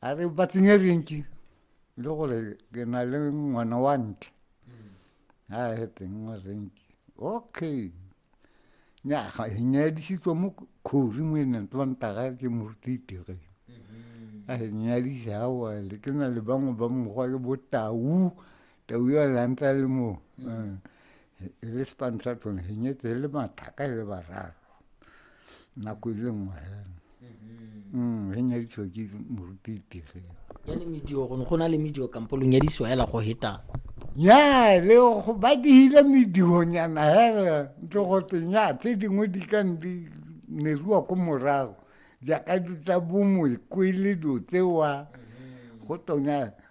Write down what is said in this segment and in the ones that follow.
a re ba tsenye rentši le gore ke na le ngwana wa ntle a he teng wa rentši okay nyaga e nyadisitswe mo khori mo e neng twantaga ke morutitege a e nyadisa awa le ke na le bangwe ba mokgwa ke botau Te o yo lantla le mo mm. eh, le spantla tsone he nyetse le mathaka le bararo nako e le nngwe fela mm-hmm. mm, he nyaditswa ke moruti tege yane medio gone go na le medio kampo lo nyadisiwa hela go hetang ya le go ba dihile medionyana hela ntse go teng ya tse dingwe di ka di neruwa ko morago jaaka di tsa bomoekwele dilo tsewa mm-hmm. go tonya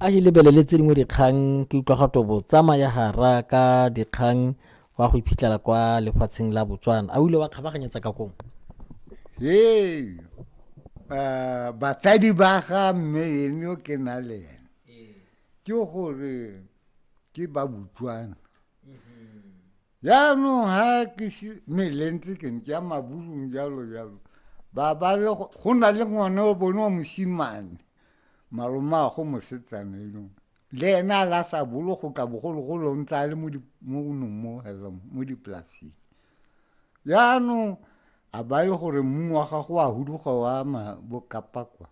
a e lebelele tse dingwe dikgang ke utlwa gato bo tsamaya gara ka dikgang wa go iphitlhela kwa lefatsheng la botswana a o ile wa kgabaganyetsa ka kong ee uh, batsadi ba ga mme ene o ke na le ene ke gore ke ba botswana jaanong ha ke se melentse ke ntse ya maburung jalo jalo ba ba le go na le ngwana o bone wa mosimane maloma a go mosetsana eno le ena a la sa bolo go ka bogologolo o ntse a le mo nong mo hello mo dipolaseng jaanong a ba le gore mmu wa gago a huduga wa ma bokapakwa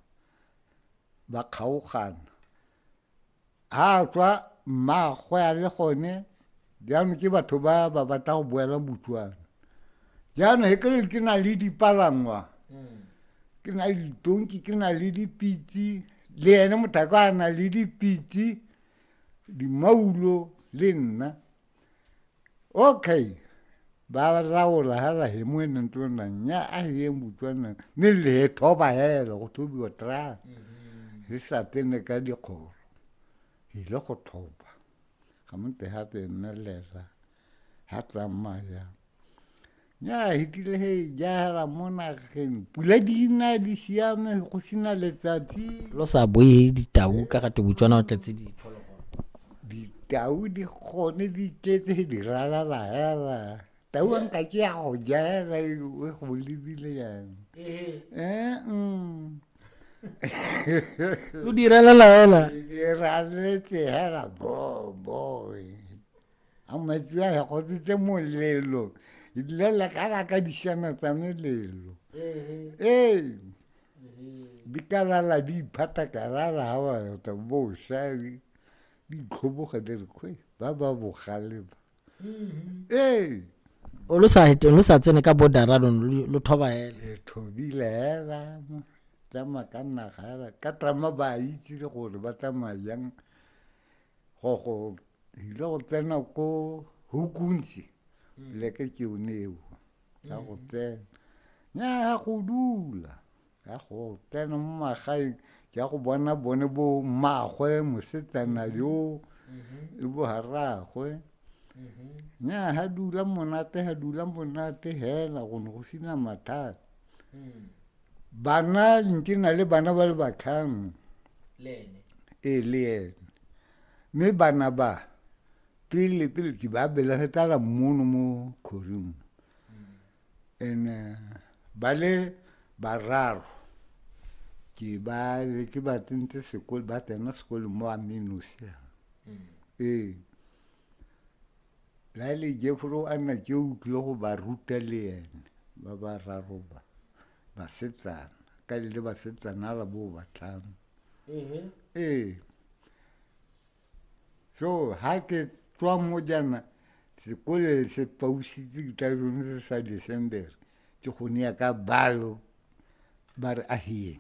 ba kgaogana a tswa mmaagwe a le gone jaanong ke batho ba ba batla go boela botswana jaanong e kere ke na le dipalangwa hmm. ke na le ditonki ke na le dipitse le ene motako a na le dipitse dimaulo le nna okay ba raola hela he mo ne ntlo na nya a ye mbutswa na ne le he thoba hela go thobiwa tra mm-hmm. se sa tene ka dikgoro e le go thoba ga mo te ha te nne le ra ha tsamaya ya hitile he jahela mo nageng pula di na di siame go sena letsatsi lo sa boe ditau ka ga tebutswana o tletse diphologolo ditau di gone di tletse he di ralala hela tau a nka ke ya go jahela e go lebile yang ee lo di ralala hela di raletse hela boboy a metsi a ya gotsetse molelo ebile le ka la ka dišana tsa melelo ee di ka lala di iphata ka lala ga ba yota bosa di itlhoboga di re kgwe ba ba bogale ba ee lo sa eteng lo sa tsene ka bodara lo lo thoba hela e thobile hela tsamaya ka naga hela ka trama ba itse gore ba tsamaya jang go go ile go tsena ko hukuntsi mm. leke ke one eo ya go mm. tsena nya ya go dula ya go tsena mo magaeng ke ya go bona bone bo mmagwe mosetsana mm-hmm. yo mm-hmm. le bo haragwe mm-hmm. nya ha dula monate ha dula monate hela go ne go sina mathata mm. bana nke na le bana ba le batlhano ee le ene mme bana ba pele pele ke ba belege tala mono mo kgoring and eh, ba le bararo ke ba ke ba tsentse sekolo ba tsena sekolo mo amenosia mm. ee la le jeforo a nna tse o tlile go ba ruta le ene ba ba raro ba basetsana ka le le basetsana a la bo batlhano ee so ha ke tswa mo jana sekole se pausitse ke tla jone se sa december ke go ne ya ka balo ba re a hiyeng